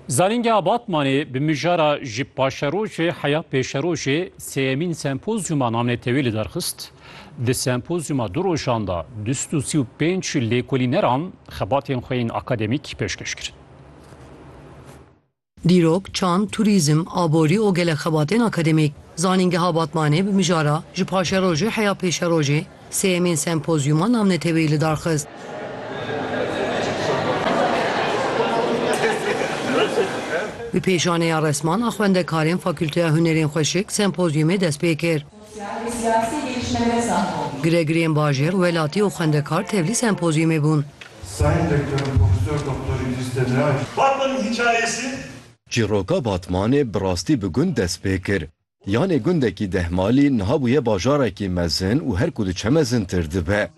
Zanîngeha Batmanê bi mijara ji paşerojê heya pêşerojê sêyemîn sempozyuma namnetewî li derxist. Di sempozyuma du rojan de du sed û sî û pênc lêkolîneran xebatên xwe yên akademîk pêşkêş kirin. Dîrok, çand, turîzm, aborî û gelek xebatên akademîk. Zanîngeha Batmanê bi mijara Ji paşerojê heya pêşerojê sêyemîn sempozyûma navneteweyî li dar xist. Bi pêşaneya resman a xwendekarên Fakûlteya Hunerên Xweşik sempozyûmê dest pê kir. Giregirên bajêr, welatî û xwendekar tevlî sempozyumê bûn. Sayın Rektörüm Profesör Doktor İdris Demiray. Batman'ın hikayesi. Çîroka Batmanê bi rastî bi gund dest pê kir. Yanê gundekî dehmalî niha bûye bajarekî mezin û her ku diçe mezintir dibe.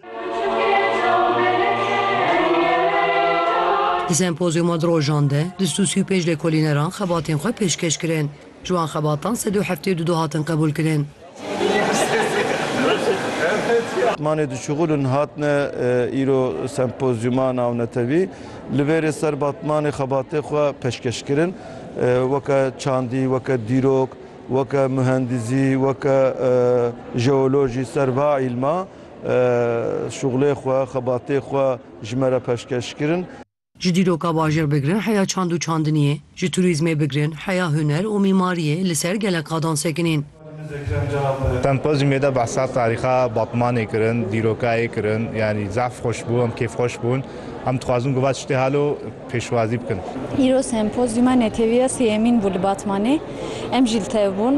Di sempozyûma di rojan de du sed û sî û pênc lêkolîneran xebatên xwe pêşkêş kirin. Ji wan xebatan sed û heftê û du du hatin qebûlkirin. Manê di şixulin hatine îro sempozyuma nawnetewî li vêrê ser batmanê xebatê xwe peşkeşkirin weke çandî, weke dîrok, weke muhendizî, weke jeolojî ser va îlma şixulê xwe, xebatê xwe ji me re peşkeşkirin. Ji dîroka bajêr bigirin heya çand û çandiniyê, ji turîzmê bigirin heya huner û mîmariyê li ser gelek qadan sekinîn. Sempozyumê de behsa tarîxa Batmanê kirin, dîrokayê kirin, yanî zehf xweş bû, em kêfxweş bûn. Em dixwazin ku va tiştê halo pêşwazî bikin. Îro sempozyuma netewîya sêyemîn bû li Batmanê. Em jî li tev bûn.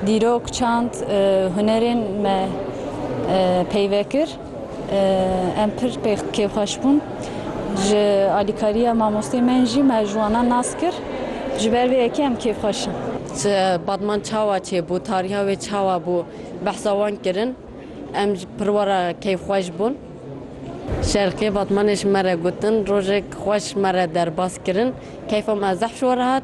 Dîrok, çand, hunerên me peyve kir. Em pir kêfxweş bûn. Ji alîkariya mamosteyên me jî me ji wan re nas kir. Ji ber vê yekê em kêfxweş in. Batman çawa çêbû, tariha wê çawa bû behsa wan kirin. Em jî pir we re kêfxweş bûn. Şerqiyê Batmanê ji me re gotin, rojek xweş ji me re derbas kirin. Keyfa me zehf ji we re hat.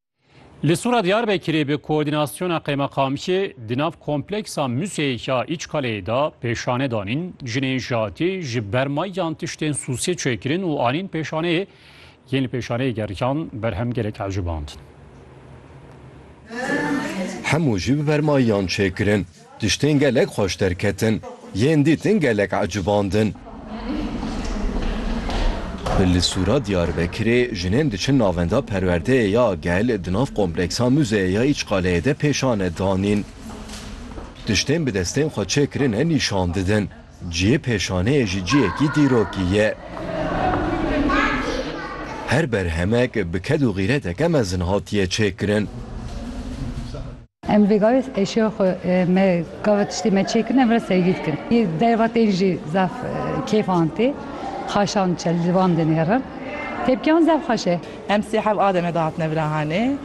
Li Sura Diyarbekirê bi koordînasyona qeymeqamiyê di nav kompleksa museyê ya Îçkaleyê de pêşane danîn, jinên jatî ji ber mayan tiştên sûsê çêkirin û anîn pêşaneyê, yên li pêşaneyê geriyan berhem gelek ecibandin. Hemû jî bi ber mayan çêkirin. Tiştên gelek xweş derketin. Yên dîtin gelek ecibandin. Li Sûra Diyarbekirê jinên diçin navenda perwerdeyê ya gel di nav kompleksa Muzeyê ya Îçqaleyê de pêşane danîn. Tiştên bi destên xwe çêkirine nîşan didin. Cihê pêşaneyê jî cihekî dîrokî ye. Her berhemek bi ked û xîreteke mezin hatiye çêkirin. Em vê gavê eşya xwe me gava tiştê me çêkirin em re sergî dikin. Yê derva tên jî zaf kêf an tê. Xaşan çi li wan dinêrin. Tepkiyan zaf xweş e. Em sê hev a deme de hatine virahanê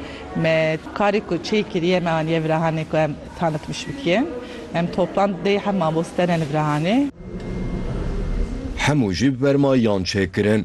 me. Karê ku çê kiriye me aniye virahanê ku em tanitmiş bikin. Em toplan dê hev mamoste ne li virahanê. Hemû jî bi berma yan çêkirin.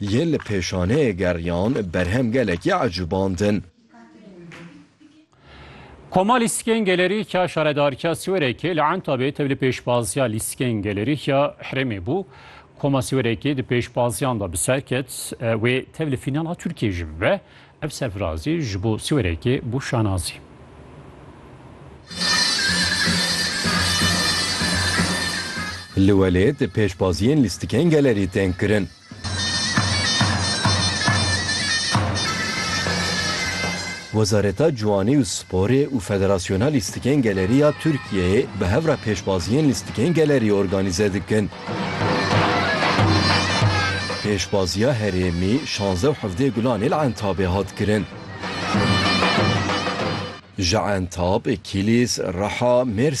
Yên li pêşaneyê geriyan berhem gelekî ecuband in. Koma lîstikên gelerîkya Şaredarkya Siwerekê li Entabê tev li pêşbaziya lîstikên gelerîkya herêmê bû. Koma Siwerekê di pêşbaziyan de bi ser ket. Wê tev li fînala Tirkiyê jî bibe. Ev serfirazî ji bo siwêrekê bû şanazî. Li welêt pêşbaziyên lîstikên gelerî tên kirin. Wezareta Ciwanî û Sporê û Federasyona Lîstikên Gelerî ya Tirkiyeyê bi hev re pêşbaziyên lîstikên gelerî organîze dikin. Pêşbaziya herêmî şanze û hevdeh Gulanê li Entabê hat kirin. Ji Entab, Kîlîs, Riha, Mêrsîn.